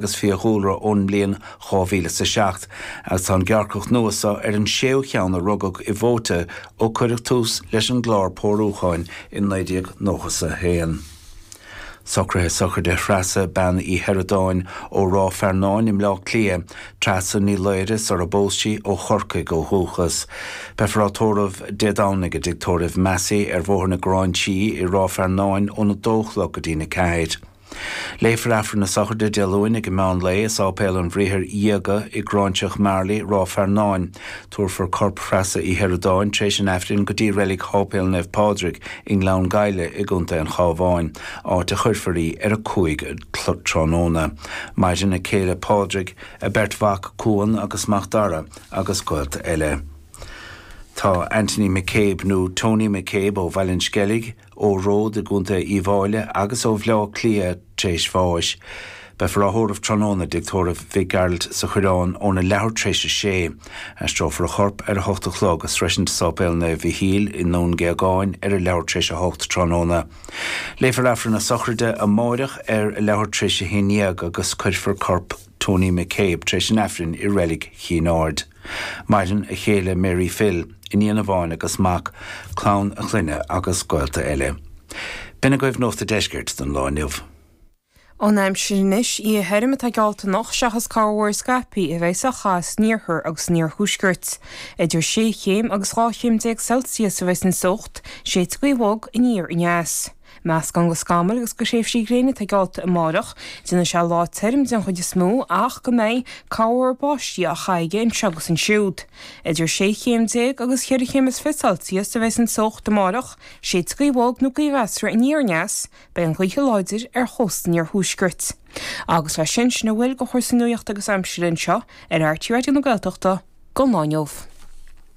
agus fiadhúlra ón mbliain dhá mhíle is a seacht, agus tá an gearrcach nua so ar an séú cheann a rugadh i bhFóta ó cuireadh tús leis an gclár pórúcháin i naoi déag nócha is a haon. Socruithe sochraide Threasa Bean Uí Shioradáin ó Ráth Fearnáin i mBleá Cliath, Treasa Ní Laoghaire sar a bpós sí, ó Chorcaigh ó dhúchas. Beifear á tórramh Dé Domhnaigh i dTigh Tórraimh Massey ar Bhóthar na Gráinsí i Ráth Fearnáin óna dó a chlog go dtí'n a ceathair. Léifear Aifreann na Sochraide Dé Luain ag an meán lae i Sáipéal an Bhriathair Dhiaga i nGráinseach Marley, Ráth Fearnáin. Tabharfar corp Threasa Uí Shioradáin tréis an Aifrinn go dtí reilig Sháipéal Naomh Pádraig i nGleann Ghaibhle i gContae an Chábháin, áit a chuirfear í ar a cúig a' chlog tráthnóna. Maireann a céile Pádraig, a beirt mhac Cuan agus Mac Dara agus gaolta eile. Tá Anthony McCabe nó Tony McCabe ó Bhaile an Sceilg, ó Ród i gContae Uíbh Fháile agus ó Bhleá Cliath tréis bháis. Beifear á thórramh tráthnóna i dtigh tórraimh Mhic Gearailt sa Choireán óna leathuair tréis a sé. Aistreofar a chorp ar a hocht a chlog ag sroisint Sáipéal Naomh Mhichíl i nDún Géagáin ar a leathuair tréis a hocht tráthnóna. Léifear Aifreann na Sochraide amáireach ar a leathuair tréis a haon dhéag agus cuirfear corp Tony McCabe tréis an Aifrinn i Reilig Chinn Aird. Maireann a chéile Mary Phil, iníon amháin agus mac, clann a chlainne agus gaolta eile. B'in agaibh Nuacht an Deiscirt don lá inniu. An aimsir anois oíche thirim atá geallta anocht seachas corrmhúr scaipthe a bheas á chaitheamh san iarthar agus san iarthuaisceart. Idir sé chéim agus dhá chéim déag Celsius a bheas an teocht, séidfidh gaoth bhog aniar aneas. Meascán de scamaill agus de thréimhsí gréine atá geallta amárach. Déanfaidh sé lá tirim den chuid is mó ach go mbeidh corrmhúr báistí á chaitheamh aige anseo agus ansiúd. Idir sé chéim déag agus cheithre chéim is fiche celsius a bheas an teocht amárach, séidfidh gaoth bhog nó gaoth mheasartha aniar aneas, beidh an ghaoth láidir ar chósta an iarthuaiscirt. Agus leis sin, sin a bhfuil de chúrsaí nuaíochta agus aimsire anseo ar RTÉ Raidió na Gaeltachta don lá inniu.